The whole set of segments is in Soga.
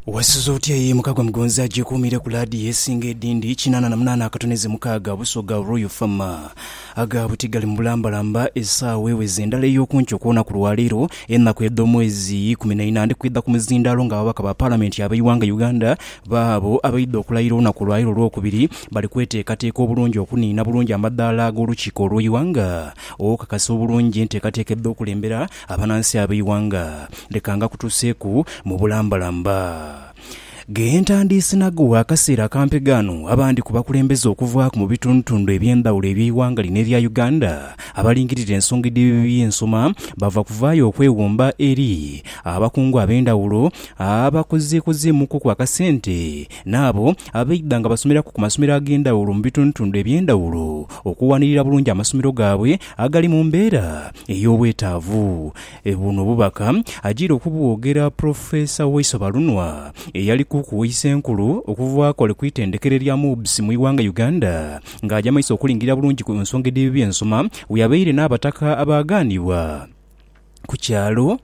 Wasuze otya ye mukagwa mugonzi agyekuumire ku laadiyo esinga edindi kinaana na munaana akatoneze mukaaga Busoga Royal Fama. Aga buti gali mu bulambalamba esaawa eweze ndala ey'okunkyo kw'onaku lwaleero enaku edh'omwezi ikumi na ina ndhikwidha ku muzindaalo nga ababaka ba palamenti abeighanga Uganda baabo abaidha okulayira olunaku olwaleero olwokubiri bali kweteekateeka obulungi okuniina bulungi amadaala ag'olukiiko olweighanga okukakasa obulungi enteekateeka edh'okulembera Abanansi ab'eighanga leka ngakutuseeku mu bulambalamba. Ghe ntandiisinagho gha kaseera akampi ghano, abandi ku bakulembeze okuvaaku mu bitundutundu eby'endhawulo eby'eighanga lino erya Uganda abalingirira ensonga edh'ebibi by'ensoma bava kuvaayo okwewumba eri abakungu ab'endhawulo abakozeekozeemukuku akasente n'abo abaidha nga basomeraku ku masomero ag'endhawulo mu bitundutundu eby'endhawulo okuwanirira bulungi amasomero gaabwe agali mu mbeera ey'obwetaavu. Buno obubaka ajiire okubwogera Professor Waiso Balunwa eyali kuku w'eisa enkulu okuva akole ku itendekero erya MUBS mu ighanga Uganda nga aja maiso okulingirira bulungi ku nsonga edh'ebyensoma bweyabaire n'abataka abaagaanibwa ku kyalo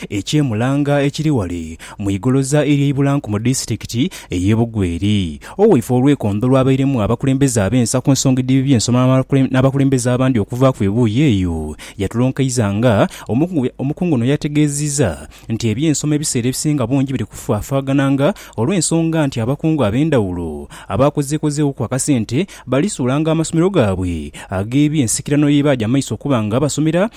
eky'e Mulanga ekiri ghale mu igoloza ery'e Ibulanku mu disitikiti ey'e Bugweri. Owaife olwekondo lwabairemu abakulembeze ab'ensa ku nsonga edh'ebi by'ensoma n'abakulembeze abandi okuvaaku ebuuyi eyo, yatulonkaiza nga omukungu ono yategeeziza nti eby'ensoma ebiseera ebisinga bungi biri kufafaagana nga olw'ensonga nti abakungu ab'endhawulo abaakozeekozeeghoku akasente balisuulanga amasomero gaabwe ag'eby'ensikirano y'ebaaja amaiso okuba nga basomera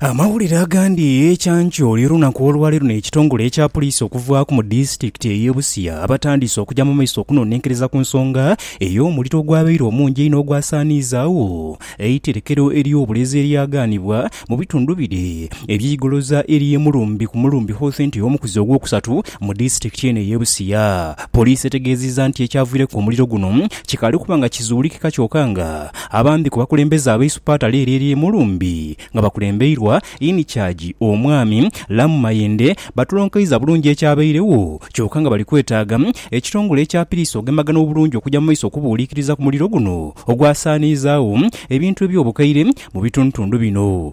Amawulire agandi ekyankyo oli olunaku olwaleero n'ekitongole ekya puliisi okuvaaku mu disitulikiti ey'e Busia abatandiise okuja mu maiso okunonenkereza ku nsonga ey'omuliro ogwabaire omungi einho ogwasaaniizaagho eiterekero ery'obulezi eryagaanibwa mu bitundu bire eby'eigoloza ery'e Mulumbi ku Mulumbi Houthent omukuzi ogwokusatu mu disitulikiti eno ey'e Busia. Puliisi etegeezizza nti ekyavwireku omuliro guno kikaali kuba nga kizuulikika kyoka nga Abandi ku bakulembeze abaisupaata Lyeryerie Mulumbi nga bakulembeirwa In Charge Omwami Lamu Mayende batulonkaiza bulungi ekyabairegho kyoka nga bali kwetaaga ekitongole ekya Piriisi ogemagana obulungi okuja mu maiso okubuuliikiriza ku muliro guno ogwasaaniizaagho ebintu eby'obukaire mu bitundutundu bino.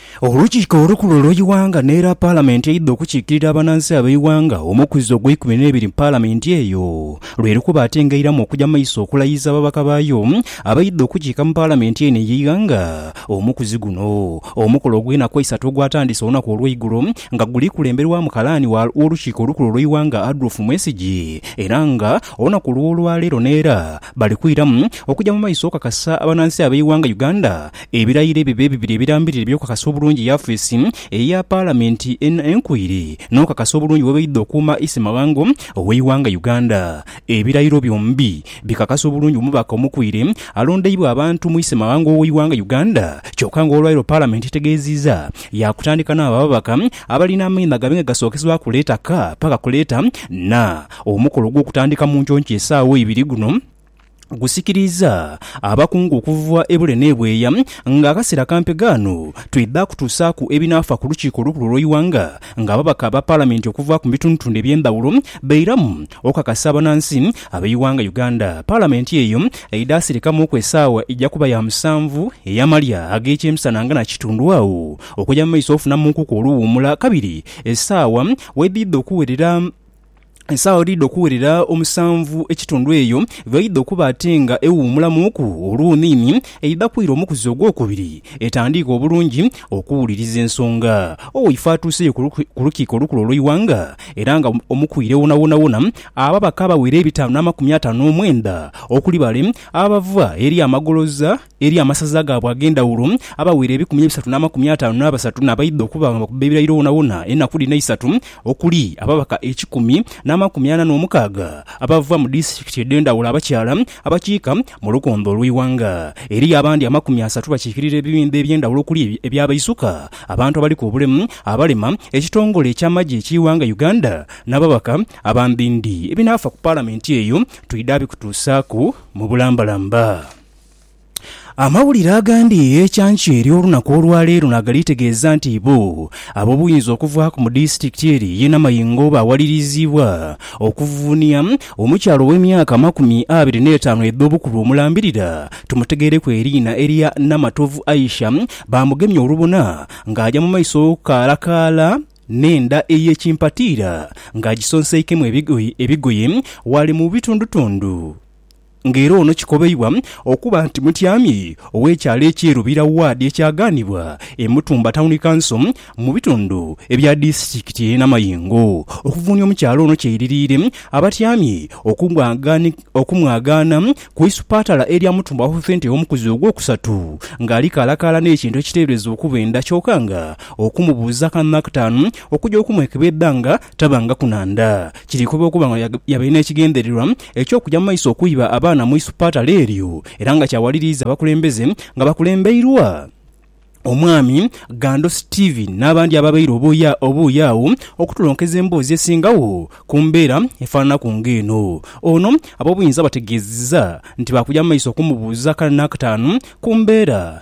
Olukiiko olukulu olw'eighanga n'era Palamenti eidha okukiikirira abanansi ab'eighanga omukwiza ogweikumi n'ebiri mu Palamenti eyo lwe likuba ate ng'eiramu okuja mu maiso okulayiza ababaka baayo abaidha okukiika mu Palamenti eno ey'eighanga omukuzi guno. Omukolo ogw'enaku eisatu ogwatandise olunaku olw'eigulo nga guli kulemberwamu kalaani w'olukiiko olukulu olw'eighanga Adolf Mwesigye era nga olunaku olw'olwaleero n'era bali kwiramu okuja mu maiso okukakasa abanansi ab'eighanga Uganda Ebirayiro ebyo be bibiri ebirambirira eby'okukakasa obulungi yafeesi eya Palamenti eno enkoire n'okukakasa obulungi bwebaidha okuuma Issemawanga ow'eighanga Uganda. Ebirayiro byombi bikakasa obulungi omubaka omukoire alondeibwa abantu mu Issemawanga ow'eighanga Uganda kyoka nga olwaleero Palamenti etegeeziiza yaakutandika n'abo ababaka abalina amaino agabe nga gasookesebwaku leeta ka paka ku leeta na. Omukolo gw'okutandika mu nkyonkyoo esaawa ibiri guno. gusikiriiza abakungu okuva ebule n'ebweya nga akaseera kampe ghano twidha kutuusaaku ebinaafa ku Lukiiko olukulu olw'eighanga nga ababaka ba Palamenti okuva ku bitundutundu eby'endhaghulo bairamu okukakasa abanansi ab'eighanga Uganda Palamenti eyo eidha sirikamuuku esaawa eija kuba ya musanvu ey'amalya ag'ekyemisana nga nakitundu agho okuja mu maiso ofunamunkuku oluwuumula kabiri esaawa wedhidha okuwerera. Esaagho edhidha okuwerera omusanvu ekitundu eyo bw'eidha okuba ate nga ewuumulamuuku olwoniini, eidha kwira omukuzi ogwokubiri etandiike obulungi okuwuliriza ensonga. Owaife atuuseyo ku Lukiiko Olukulu olw'Eighanga era nga omukwire wonawonawona, ababaka abawera ebitaanu n'amakumi ataano n'omwenda okuli bale abava eri amagoloza, eri amasaza gaabwe ag'endhawulo, abaweera ebikumi ebisatu n'amakumi ataanu n'abasatu n'abaidha okuba nga bakuba ebirayiro wonawona enaku dhino eisatu, okuli, ababaka ekikumi n'amakumi ana n'omukaaga abava mu disitikiti edh'endhawulo abakyala abakiika mu lukonda olw'eighanga. Eriyo abandi amakumi asatu bakiikirira ebibinba eby'endhawulo okuli, eby'abaisuka, abantu abaliku obulemu, abalema, ekitongole eky'amagye eky'eighanga Uganda n'ababaka aba Mbindi. Ebinaafa ku Palamenti eyo twidha bikutuusaaku mu bulambalamba. Amawulire agandi ekyankya ery'olunaku olwaleero nagali tegeeza nti ibo ab'obuyinza okuvaaku mu disitulikiti eri ye Namayingo bawaliriziibwa okuvunia omukyala ow'emyaka amakumi abiri n'etaanu edh'obukulu omulambirira tumutegeereku eriina erya Namatovu Aisha baamugemye olubona ng'aja mu maiso okukaalakaala n'enda ey'ekimpatiira ng'agisonseikemu ebigoye wali mu bitundutundu nga era ono kikobeibwa okuba nti mutyami ow'ekyalo ekye Lubira Ward ekyaganibwa e Mutumba Town Council mu bitundu ebya disitikiti ye Namayingo okuvunia omukyala ono kyeiririire abatyami okumwagaana ku isupatala erya Mutumba Healthcenter omukuzi ogwokusatu nga alikalakaala n'ekintu ekiteberezebwa okuba enda kyoka nga okumubuuza kanaktaanu okuja okumwekebedha nga Tabangaku na nda. Kiri kuba okuba nga yabaire n'ekigendererwa eky'okuja mu maiso okuiba abaana mu isupatale eryo era nga kyawaliriiza abakulembeze nga bakulembeirwa Omwami Gando Stephen n'abandi ababaire oboye agho okutulonkeza emboozi esingagho ku mbeera efananaku ng'eno. Ono ab'obuyinza bategeezezza nti baakuja mu maiso okumubuuza akana n'akataanu ku mbeera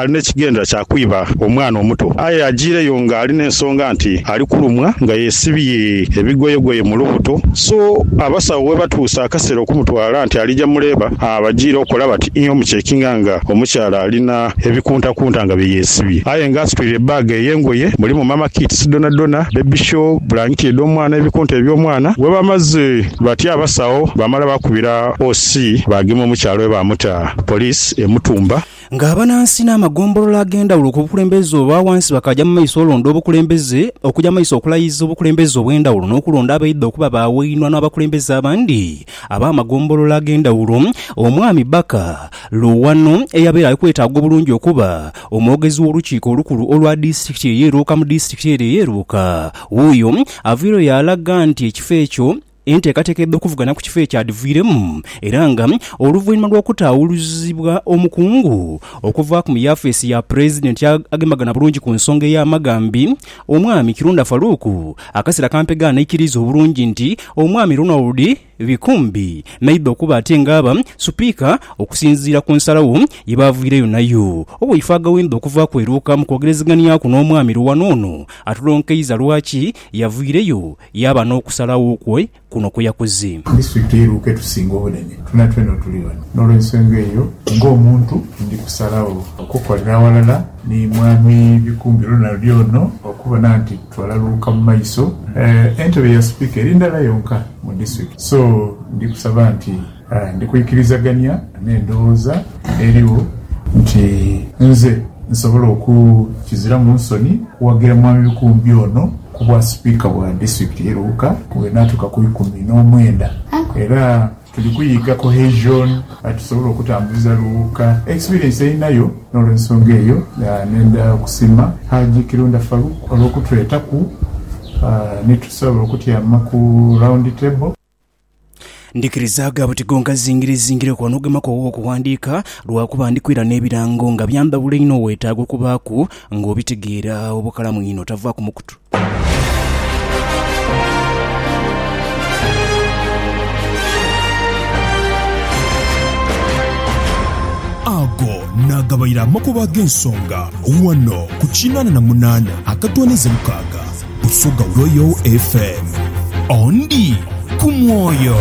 ali n'ekigendera kya kwiba omwana omuto aye ajiireyo nga ali n'ensonga nti ali kulumwa nga yesibye ebigoyegoye mu lubuto so abasawo webatuusa akaseera okumutwala nti alija mu leeba abajiire okola bati ii omucekinga nga omukyala alina ebikuntakunta nga bye yesibye aye nga asitwire ebbaga ey'engoye mulimu mama kits dhonadhona, baby shawl, bulangiti edh'omwana, ebikunta eby'omwana. Webamaze batyo abasawo baamala baakubira OC baagema omukyala we baamuta poliisi e Mutumba. Nga abanansi n'amagombolola ag'endhawulo ku bukulembeze obwa wansi bakaaja mu maiso olonda obukulembeze, okuja mu maiso okulayiza obukulembeze obw'endhawulo n'okulonda abaidha okuba ba wainwa n'abakulembeze abandi ab'amagombolola ag'endhawulo, Omwami Baka, Luwano, eyabeera ali kwetaaga obulungi okuba omwogezi w'Olukiiko Olukulu olwa Disitulikiti eye Luuka mu Disitulikiti ere eye Luuka, wuuyo aviireyo yaalaga nti ekifo ekyo Enteekateeka edh'okuvugana ku kifo ekyadhiviiremu era nga oluvainhuma lw'okutaawuluzibwa omukungu okuva ku mu yafeesi ya Pulezidenti agembagana bulungi ku nsonga ey'amagambi, Omwami Kirunda Farouk akasera kampegha n'aikiriiza obulungi nti Omwami Ronald Bikumbi naidha okuba ate ng'aba Supiika okusinziira ku nsalagho ye baaviireyo nayo. Oweifaaga Wendha okuva ku eruuka mu kwogerezeganiaku n'Omwami Luwano ono atulonkeiza lwaki Yavwireyo yaaba n'okusalagho kwe kuno kwe yakoze. Kristo iteiruo ke tusinga obunene. Twena twena otuli ghano. N'olw'ensonga eyo, ng'omuntu, ndi kusalagho okukolera aghalala ni Mwami Bikumbi olunaali ono okubona nti twalaluuka mu maiso. Entebe ya Sipiika eri ndala yonka mu District, so ndi kusaba nti Ndi kwikirizagania n'endowooza erigho nti nze nsobola oku, kiziramu nsoni kuwagira Mwami Bikumbi ono ku bwa Sipiika bwa Disitulikiti ye Luuka bwenaatuuka ku ikumi n'omwenda era tuli kuyiga cohesion atusobola okutambuza Luuka. Experience eyinayo n'olwensonga eyo nenda okusiima Hajji Kirunda Farouk olw'okutwetaku ni tusobola okutyama ku round table. Ndikirizaaga buti gongazingire zingire okuba n'ogema kwogho okuwandiika lwakuba ndi kwira n'ebirango nga byandhabula inho weetaaga okubaaku ng'obitegeera obukalamu inho tavaaku mukutu. Ago naagabaire amakubo ag'ensonga ghano ku kinaana na munaana akatoonheze mukaaga. Busoga Royal FM. Ondi ku mwoyo.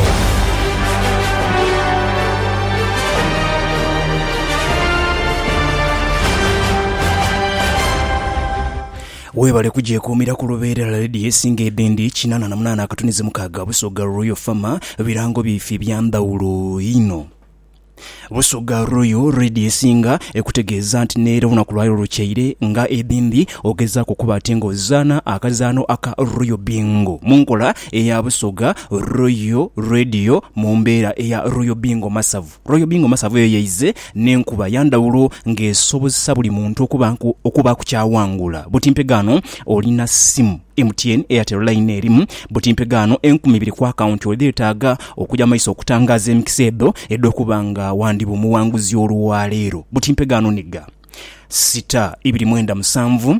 Webale kugyekuumira ku lubeerera leediyo esinga edindi kinana na munaana akatunizi mukaaga Busoga Royal FM birango byaife ebya ndhawulo inho. Busoga Royal Radio esinga ekutegeeza nti n'era olunaku lwaleero lukyaire nga edhimbi ogezaaku okuba ati nga ozaana akazaano aka Royal Bingo mu nkola eya Busoga Royal Radio mu mbeera eya Royal Bingo Masavu. Royal Bingo Masavu eyo yaize n'enkuba ya ndhawulo ng'esobozesa buli muntu okuba okubaaku ky'awangula. Buti mpegaano olina ssimu. MTN, Airtel Line erimu buti mpegaano enkumi ibiri ku akawunti edhetaaga okuja mu maiso okutangaaza emikisa edho edh'okuba nga wandiba omuwanguzi olwaleero. Buti mpegaano ni gha, sita ibiri mwenda musanvu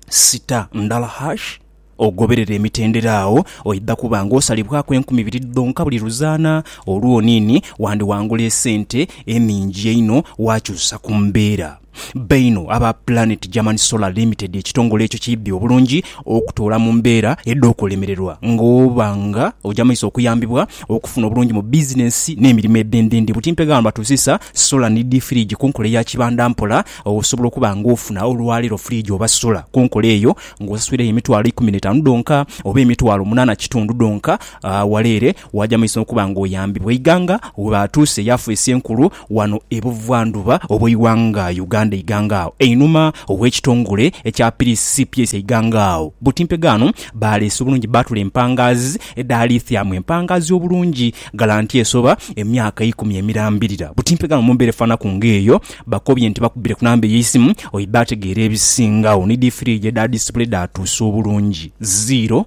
sita ndala hash ogoberere emitendera agho oidha kuba nga osalibwaku enkumi ibiri dhonka buli luzaana olwoniini wandiwangula esente eningi einho wakyusa ku mbeera. baino aba Planet German Solar Limited ekitongole ekyo kiidhi obulungi okutoola mu mbeera edh'okulemererwa ng'oba nga oja mu maiso okuyambibwa okufuna obulungi mu bizinensi n'emirimo edh'endhindhi. Butimpe gamba tuusisa sola ni dhi firiigi ku nkola eya kibanda mpola osobola okuba ng'ofuna olwaleero firiigi oba sola ku nkola eyo ng'osasuiregho emitwalo ikumi n'etaanu dhonka oba emitwalo munaana kitundu dhonka waleere Waaja mu maiso n'okuba ng'oyambibwa eighanga we baatuuse yafeesi enkulu wano e Buvandhuba obw'eighanga Uganda eighanga agho. Einhuma ow'ekitongole ekya Piriisi CPS eighanga agho butimpega ghano baaleese obulungi bbaatule empangaazi edhaaliithyamu empangaazi obulungi ghala nti esoba emyaka eikumi emirambirira butimpega ghano mu mbeera efaanaku ng'eyo. Bakobye nti bakubire ku namba ey'eisimu oidhi baategeera ebisingagho ni dhi firiigi edha disipule edhaatuuse obulungi. Zero.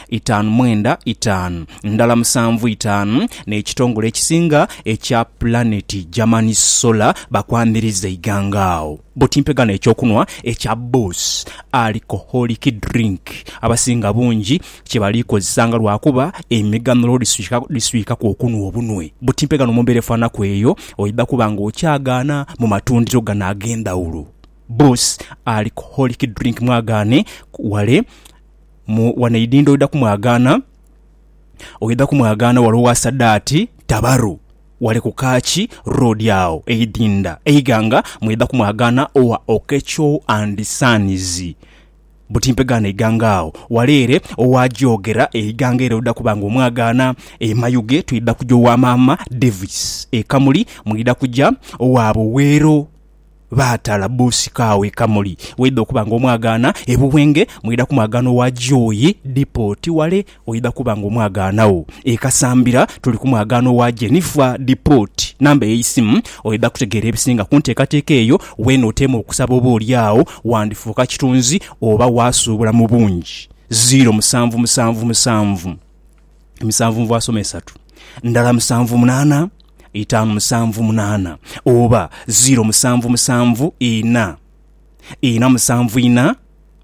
itaanu mwenda itaanu ndala musanvu itaanu n'ekitongole ekisinga ekya pulaneti German Solar bakwamiriza eighanga agho buti mpegano eky'okunwa ekya Boss Alcoholic Drink abasinga bungi kye bali kozesanga lwakuba emigano lwo dhiswikaku okunwa obunwe buti mpegano mu mbeera efaanaku eyo oidha kuba nga okyagaana mu matundiro gano ag'endhawulo Boss Alcoholic Drink mwagaane wale Mu wanaidinda oidha kumwagaana, oidha kumwagaana wale owa Sadaati, Tabaru, wale ku Kachi Road agho eidinda eighanga mweidha kumwagaana owa Okecho and Sons buti mpegaano eighanga agho wale ere owa Gyogera eighanga ere oidha kuba nga omwagaana. E Mayuge twidha kuja owa Maama Davis. E Kamuli mwidha kuja owa Buweero Baatala bbuusi kaawo e Kamuli. Bw'oidha okuba nga omwagaana e Buwenge, mwidha kumwagaana owa Joy Depot wale oidha kuba nga omwagaanagho. E Kasambira tuli ku mwagaano wa Jennifer Depot. Namba y'eisimu oidha kutegeera ebisinga ku nteekateeka eyo w'enooteema okusaba oba oli agho wandifuuka kitunzi oba waasuubula mu bungi. Ziiro musanvu musanvu musanvu. emisanvu mu bwasoma esatu, ndala musanvu munaana, itaanu musanvu munaana, oba ziiro musanvu musanvu ina, ina musanvu ina,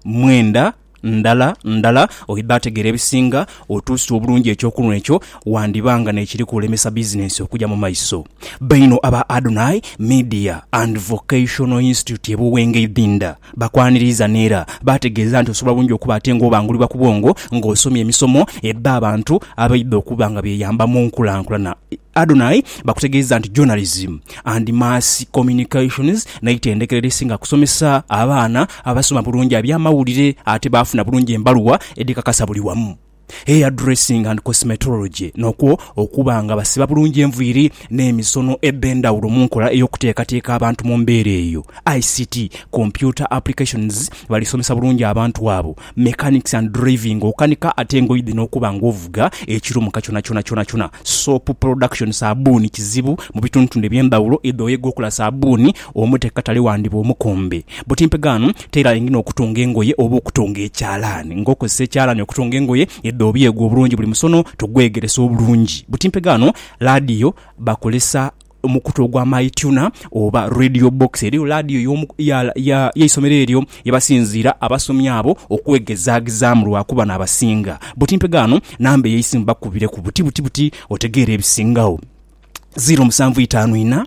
mwenda, ndala, ndala. Oidha ategeera ebisinga otuusa obulungi ekyokunhwa ekyo, wandiba nga n'ekiri kulemesa bizinensi okuja mu maiso. Baino aba Adonai Media and Vocational Institute e Buwenge Idhinda. Bakwaniriiza n'era baategeeza nti osobola bulungi okuba ate ng'obangulibwa ku bwongo ng'osomye emisomo ebba abantu abaidha okuba nga beeyamba mu nkulankulana. Adonai bakutegeeza nti Journalism and Mass Communications n'eitendekero erisinga kusomesa abaana abasoma bulungi aby'amawulire ate baafuna bulungi embaluwa edhikakasa buli wamu. hairdressing and cosmetology, n'okwo okuba nga basiba bulungi enviiri n'emisono edh'endhawulo mu nkola ey'okuteekateeka abantu mu mbeera eyo. ICT, Computer Applications, Balisomesa bulungi abantu abo. Mechanics and driving, Okanika ate ng'oidhi n'okuba ng'ovuga ekiro mu kakyona kyona kyonakyona. Soap Production, Saabbuuni kizibu mu bitundutundu eby'endhawulo, idha oyega okola saabbuuni, Omute katale wandiba omukumbi. Butimpe ghano tailor ngina okutunga engoye oba okutunga ekyalaani. Ng'okozesa ekyalaani okutunga engoye edho obyegwa obulungi buli musono tugwegeresa obulungi. Butimpe ghano laadiyo bakozesa omukutu ogwa MyTuner oba Radio Box. Eriyo laadiyo y'omu, ya, ya, y'eisomero eryo ye basinziira abasomi abo okwegezaagezaamu lwa kuba n'abasinga. Butimpe ghano namba ey'eisimu bakubireku buti buti buti otegeere ebisingagho. Ziiro musanvu itaanu inha.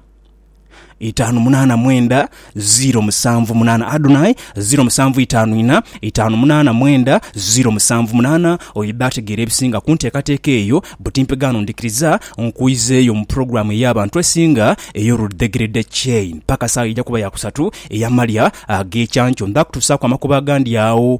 itaanu munaana mwenda ziiro musanvu munaana Adonai ziiro musanvu itaanu ina itaanu munaana mwenda ziiro musanvu munaana Oyo bba ategeera ebisinga kunteekateeka eyo butimpe gaano ndikiriza nkwizeeyo mu program ey'abantu esinga ey'oludhegerede chain paka saawa eija kuba ya kusatu eyamalya ag'ekyankyo ndha kutusaaku amakubo agandi agho